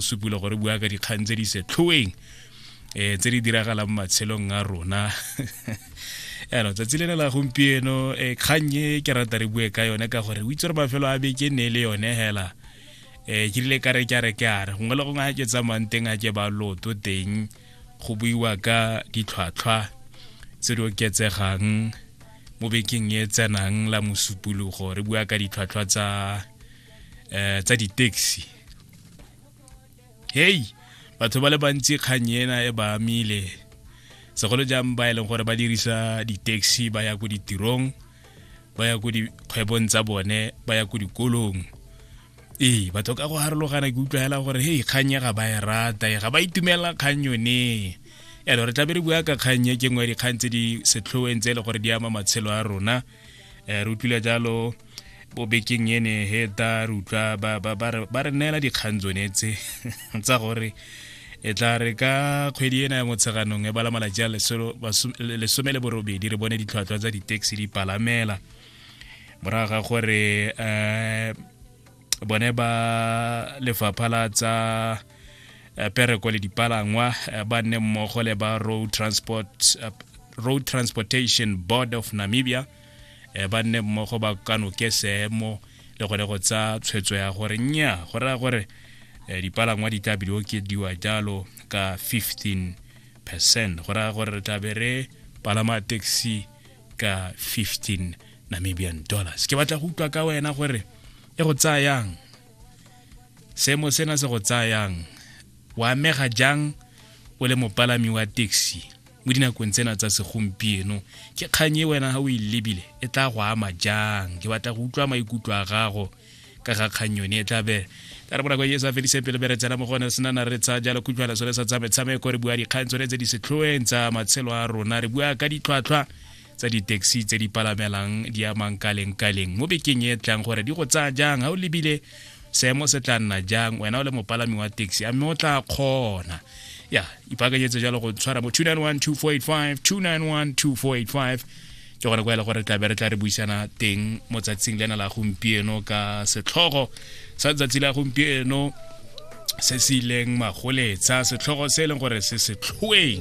supula gore bua ka dikgang tse di setlhoeng um tse di diragalang matshelong a rona yaanong tsatsi lene la gompieno um kgang e ke rata re bue ka yone ka gore o itse gore mafelo a beke ne e le yone hela um ke rile ka re ke a re ke a re gongwe le gongwe a ke tsamayang teng a ke ba loto teng go buiwa ka ditlhwatlhwa tse di oketsegang mo bekeng e tsenang la mosupologo re bua ka ditlhwatlhwa tsa um tsa di-taxi hei batho ba le bantsi kgang ena e ba amile segolo jang ba e leng gore ba dirisa di-taxi ba ya ko ditirong ba ya ko dikgwebong tsa bone ba ya ko dikolong ee batho ka go harologana ke utlwa fela gore hei kgang e ga ba e rata e ga ba itumelela kgang yone yalo re tlabe re bua ka kgang e ke nngwe ya dikgang tse di setlhoeng tse e le gore di ama matshelo a rona eh, re utlwile jalo bobekeng ene he ta re utlwa ba re neela dikgang tsone tse tsa gore e tla re ka kgwedi ena ya motsheganong e bala malatsi a lesome le borobedi re bone ditlhwatlhwa tsa di-taxi di palamela morago ga gore um bone ba lefapha la tsa eh, pereko le dipalangwa eh, ba nne mmogo le ba road transport, eh, road transportation board of namibia ba nne mmogo ba kanoke seemo le gone go tsa tshwetso ya gore nya go raya gore dipalangwa di tla biliwo ke diwa jalo ka 15 percent go raya gore re tlabe re palama taxi ka 15 namibian dollars ke batla go utlwa ka wena gore e go tsayang seemo sena se go tsayang o amega jang o le mopalami wa taxi mo dinakong tsena tsa segompieno ke kgang e wena ga o e lebile e tla go ama jang ke batla go utlwa maikutlo a gago ka ga kgang yone e tlabe ka re bonako yeso a fedise pele bere tsena mo gone re senana re tsa jalo kutlwala sone sa tsa metshameko re bua dikgang tsone tse di setlhoeng tsa matshelo a rona re bua ka ditlhwatlhwa tsa di-taxi tse di palamelang di amang ka leng ka leng mo bekeng e tlang gore di go tsaya jang ga o lebile seemo se tla nna jang wena o le mopalami wa taxi a mme o tla kgona ya ipaakanyetse jalo go tshwara mo 291 291 ke gone kwa e le gore tlabe re tla re buisana teng mo tsatsing lena la gompieno ka setlhogo sa tsatsi la gompieno se se ileng magoletsa setlhogo se e leng gore se setlhoeng